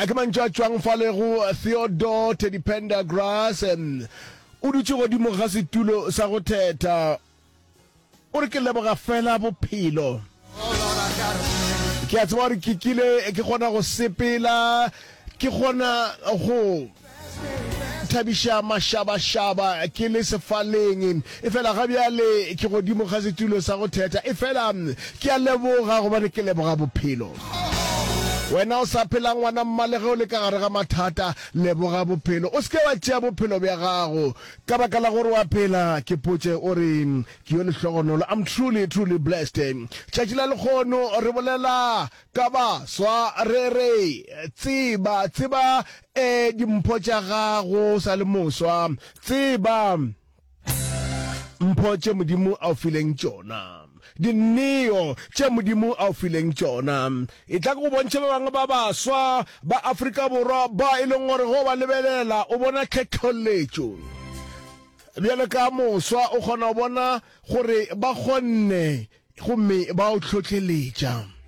a ke mantšu a tšwang fa lego theodore teddy pendergrass o dutše godimo ga setulo sa go theta o re ke leboga fela bophelo ke a tseba gore ke kile ke kgona go sepela ke kgona go Thabiša mašabašaba ke le sefaleng, efela ga bjale ke godimo ga setulo sa go thetha. Efela ke a leboga gobane ke leboga bophelo. Wena o sa phelang ngwana mma le ge o le ka gare ga mathata, leboga bophelo. O se ke wa tšea bophelo bja gago ka baka la gore wa phela. Ke potše o re ke yo lehlogonolo. I'm truly, truly blessed. Tšatši la lekgono re bolela Ka baswa, re re, Tseba, tseba, e, dimpho tša gago o sa le moswa, tseba mpho tše Modimo a o fileng tšona, dinneo tše Modimo a o fileng tšona. E tla ke go bontšhe ba bangwe ba baswa ba Afrika Borwa ba e leng gore go ba lebelela o bona tlhetholletšo. Bjale ka moswa o kgona go bona gore ba kgonne Gomme ba o hlohleletša.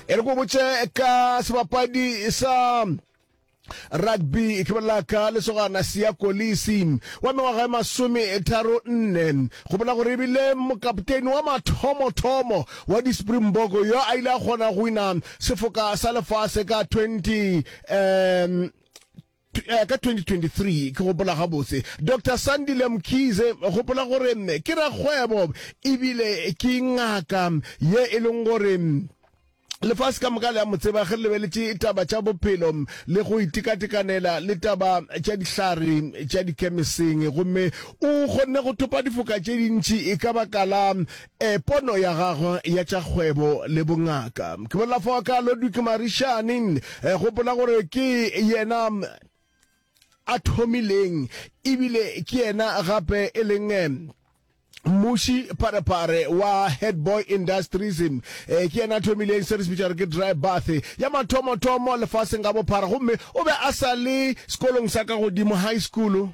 e re ko botse ka sebapadi sa rugby e ke bolela ka lesogana sia kolisi wa mengwaga ya masome tharo nne go bola gore ebile mokapteini wa mathomo-thomo wa di-springbok yo a ile a kgona go wina sefoka sa lefase ka 20 um Ka 2023, ke gopola gabotse, Doctor Sandile Mkhize, gopola gore ke rakgwebo ebile ke ngaka ye e leng gore lefase ka moka le a mo tseba ge le lebeletše taba tša bophelo le go itekatekanela le taba tša dihlare tša dikemeseng gomme o kgonne go thopa difoka tše dintši e ka baka la Ee, pono ya gagwe ya tša kgwebo le bongaka. Ke bolela fa ka Ludwig Marishani, gopola gore ke yena a thomileng ebile ke yena gape e leng mmuši parepare wa Headboy Industries. E, ke yena a thomileng se re se bitša gore ke dry bath ya mathomo-thomo lefaseng ka bophara, gomme o be a sa le sekolong sa ka godimo, high school.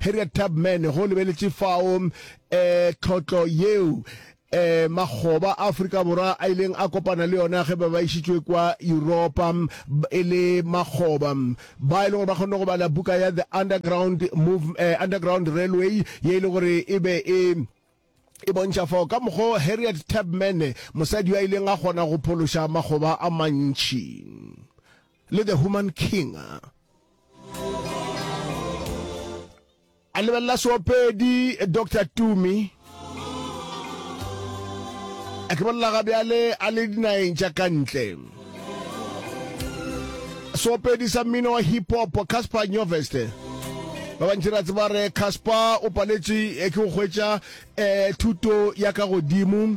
Harriet Tubman go lebeletše fao um tlhotlo yeo eh makgoba a Afrika Borwa a ileng a kopana le yona ge ba ba išitšwe kwa Europa e le makgoba ba e leng gore ba kgonne go bala buka ya The Underground Move eh, Underground Railway ye e le gore e be e e bontšha fao ka mokgo Harriet Tubman mosadi yo a ileng a kgona go phološa makgoba a mantšhi Le The Human King. A lebelela seopedi Doctor Tumi. A ke bolela ga bjale a le dinageng tša ka ntle. Seopedi sa mmino wa hip hop Casper Nyovest. Ba bantši ra tseba re Casper o paletše eh, ke go hwetša eh, thuto ya ka godimo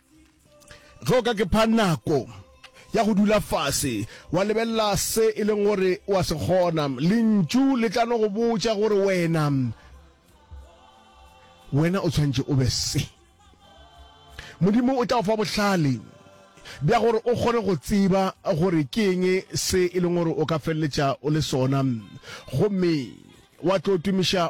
ge o ka ke pha nako ya go dula fase wa lebelela se e leng gore wa se kgona lentšu le tla no go botša gore wena wena o tshwanetse o be se modimo o tla go fa bohlale bja gore o kgone go tseba gore ke eng se e leng gore o ka feleletša o le sona gomme wa tlo tumiša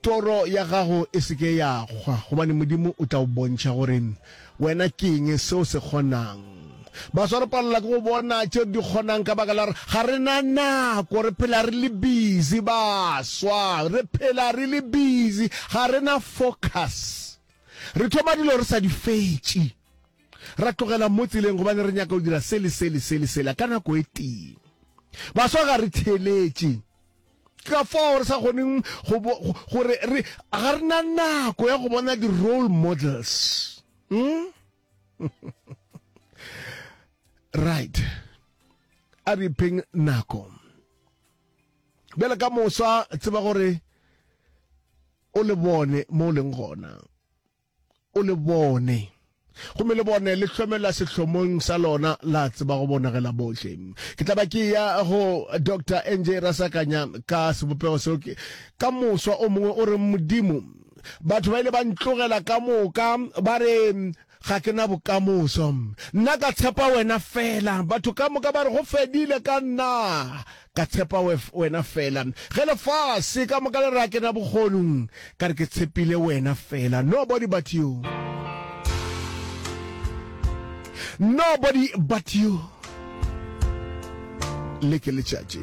Toro ya gago e se ke ya kgwa, gobane Modimo o tla go bontšha gore wena ke eng se o se kgonang. Baswa re palelwa ke go bona tše re di kgonang ka baka la gore ga re na nako, re phela re le busy. Baswa re phela re le busy, ga re na focus. Re thoma dilo re sa di fetše, ra tlogela mo tseleng gobane re nyaka go dira se le se le se le sela ka nako e tee. Baswa ga re theeletše, Ke ka fao re sa kgoneng go bo, gore re, ga re na nako ya go bona di-role models. Hmm? right. A re ipheng nako. Bjale ka mosa, tseba gore o le bone mo o leng gona. O le bone. Gomme le bone le hlomela sehlomong sa lona la tseba go bonagela bohle. Ke tla ba ke ya go Doctor NJ Rasakanya ka sebopego seo ke, ka moswa o mongwe o re, Modimo, batho ba ile ba ntlogela ka moka, ba re ga ke na bokamoso. Nna ka tshepa Wena feela. Batho ka moka ba re go fedile ka nna. Ka tshepa Wena fela. Ge lefase ka moka le re a kena bokgonung, ka re ke tshepile Wena fela. Nobody but You. Nobody but You. Le ke letšatši.